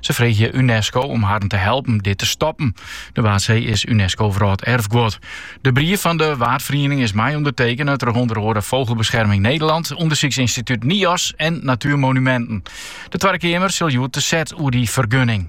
Se freegje UNESCO om harren te helpen dit te stoppen. De Waadsee is UNESCO Wrâlderfguod. De brief fan de Waadferiening is mei ûndertekene troch ûnder oare Vogelbescherming Nederland, Undersyksynstituut NIOZ en Natuurmonumenten. De Twadde Keamer sil hjoed te set oer dy fergunning.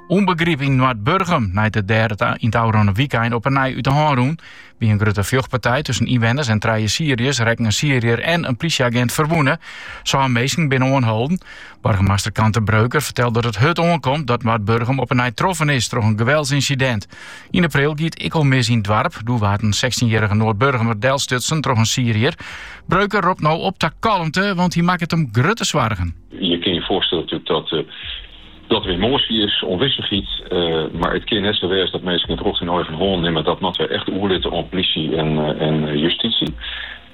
Ûnbegryp yn Noardburgum nei't it dêr yn it ôfrûne wykein op 'e nij út de hân rûn. By in grutte fjochtpartij tusken ynwenners en trije Syriërs rekken in Syriër en in plysjeagint ferwûne. Sân minsken binne oanholden. Boargemaster Kante Breuker vertelt dat het hurd oankomt dat Noardburgum op 'e nij troffen is troch in geweldsynsidint. Yn april gie it ek al mis yn it doarp. Doe waard in 16-jarrige Noardburgumer delstutsen troch in Syriër. Breuker ropt no op ta kalmte, want hy makket him grutte soargen. Je kin je foarstelle natuerlik dat, eh, dat der emotie is, ûnwissichheid. eh, mar it kin net sa wêze dat minsken it rjocht yn eigen hân nimme. Dat moatte wy echt oerlitte aan politie en, eh, en eh, justitie.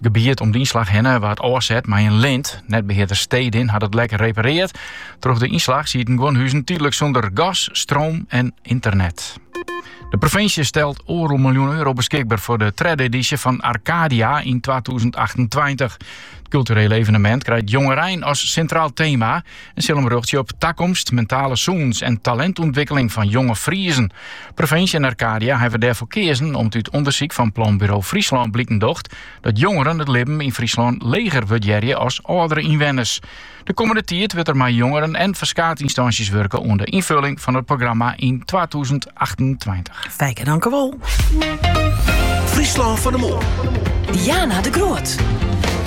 gebiet om de ynslach hinne waard ôfset mei in lint. Netbehearder Stedin hat het lek repareard. Troch de ynslach sieten guon huzen tiidlik sûnder gas, stroom en ynternet. De provinsje stelt oardel miljoen euro beskikber foar de tredde edysje fan Arcadia yn 2028. It kulturele evenemint krijt jongerein as sintraal tema en sil him rjochtsje op takomst, mentale sûnens en talintûntwikkeling fan jonge Friezen. Provinsje en Arcadia hawwe dêrfoar keazen om't út ûndersyk fan Planburo Fryslân bliken docht dat jongeren it libben yn Fryslân leger wurdearje as âldere ynwenners. De kommende tiid wurdt der mei jongeren en ferskaat ynstânsjes wurke oan de ynfulling fan it programma yn twatûzen achtentweintich. Fijke, dank u wel. Fryslân fan 'e Moarn. Diana de Groot.